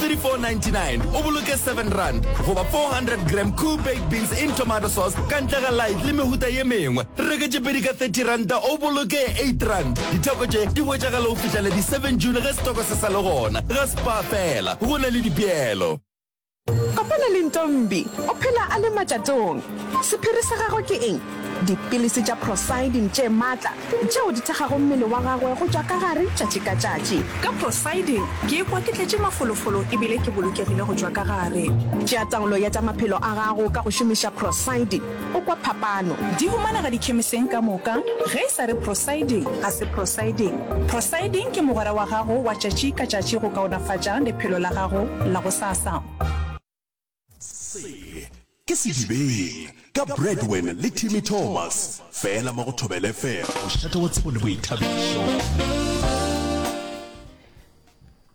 3499 o boloke 7 rand goba 400 gram cool baked beans in tomato sauce ka ntle ga light le mehuta ye mengwe reke tše pedi ka 30 ranta o boloke 8 rand ditheko tše di hwetšagala go fihlela di 7 june ge setoko se sa le gona ga spa fela go na le dipeelo Kopana le Ntombi, o phela a le matšatong. Sephiri sa gagwe ke eng? Dipilisi tša prosidin tše matla tšeo di thekgago mmele wa gagwe go tšwa ka gare tšatši ka tšatši. Ka prosidin ke ikwa ke tletše mafolofolo e bile ke bolokegile go tšwa ka gare. Tšea taolo ya tša maphelo a gago ka go šomiša prosidin, o kwa phapano. Di humanega dikhemiseng ka moka. Ge e sa re prosidin, ga se prosidin. Prosidin ke mogwera wa gago wa tšatši ka tšatši go kaonafatša lephelo la gago la gosasa. Se ke Sedibeng ka Bradwin le Timmy Thomas fela mo go Thobela FM, mošate wa tsebo le boithabišo.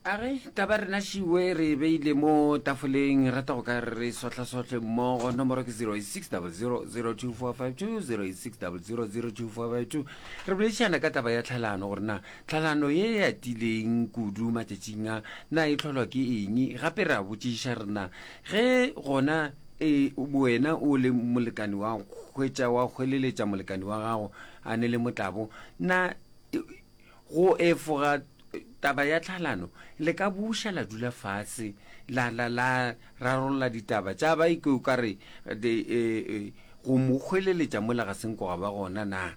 a re ka ba rena šiwe re e beile mo tafoleng rata go ka re sotlhasotlhe mmogo nomoro ke 086002452 086002452 re boledišana ka taba ya tlhalano gore na Tlhalano ye e atileng kudu matšatšing a na e hlolwa ke eng? Gape re a botšiša re na, Ge gona e, wena o le molekane wa hwetša wa hweleletša molekane wa gago a ne le motlabo, na go efoga taba ya tlhalano le ka buša la dula fase la, la, la rarolla ditaba tša ba e ke o ka re go mo hweleletša mola ga se nko ga ba gona? Na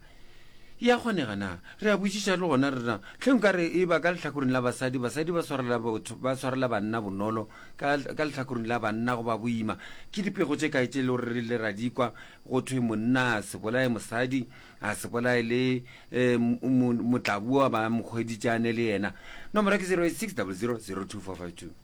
E a kgonega na? Re a botšiša le gona rena. Hle nka re e ba ka lehlakoreng la basadi, basadi ba swarela botho, ba swarela banna bonolo, ka, ka lehlakoreng la banna go ba boima. Ke dipego tše kae tše e lego re rile ra di kwa, go thwe monna a se bolaye mosadi, a se bolaye le um, mo, motlaboa ba mo hweditše a ne le yena. Nomoro ya ke 0860000245.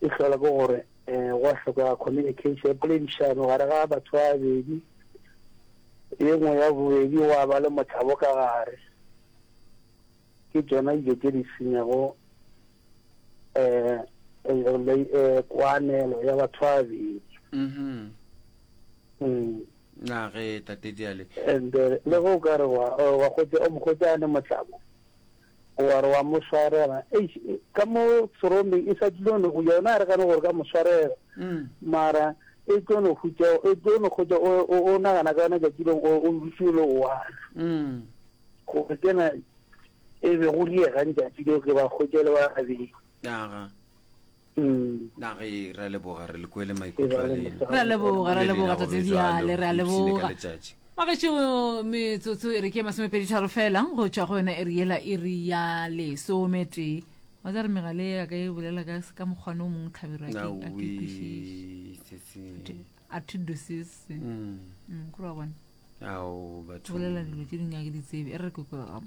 E hlola ke gore um gwa hlokega communication, poledišano gare ga batho ba babedi. Ye nngwe ya bobedi gwa ba le mothabo ka gare. Ke tšona dijo tše di senyago um koanelo ya batho ba babedi. Mm-hmm. Mm. Na ge tate Diale. And le ge o ka re wa wa gotse o mokgotse a ne motlabo. O a re wa mo swarela. Eish, ka mo Serombe e sa tlilo no, yona a re gane gore ka mo swarela. Mara e tlo no hutša, e tlo no hutša o, o, o nagana ka yona tšatši leng o, o dutše o le one. Gore kena e be go diega ntšatši leo ke ba hwetše le ba babedi. Aga. Nage re a leboga re le kwele maikutlo a lena. Re a leboga, re a leboga Tate Diale, re a leboga. Wa gešo metsotso e re ke masomepedi tharo fela go tšwa go yona e re yela e re ya lesometee wa tsa re megale ya ka e bolela ka ka mokgwane o mongwe tlhabero ya ke a ke kwešiše a to do sis mm. mm, kore wa bona ao batho bolela dilo tše dingwe a ke di tsebe e re re kwekwe gama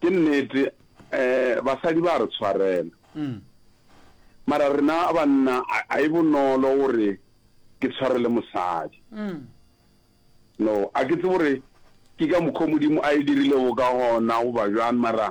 Ke nnete um basadi ba a re tshwarela. Mara rena banna a e bonolo gore ke tshwarele mosadi. No, a ke tsebe gore ke ka mokgwa Modimo a e dirilego ka gona goba bjang mara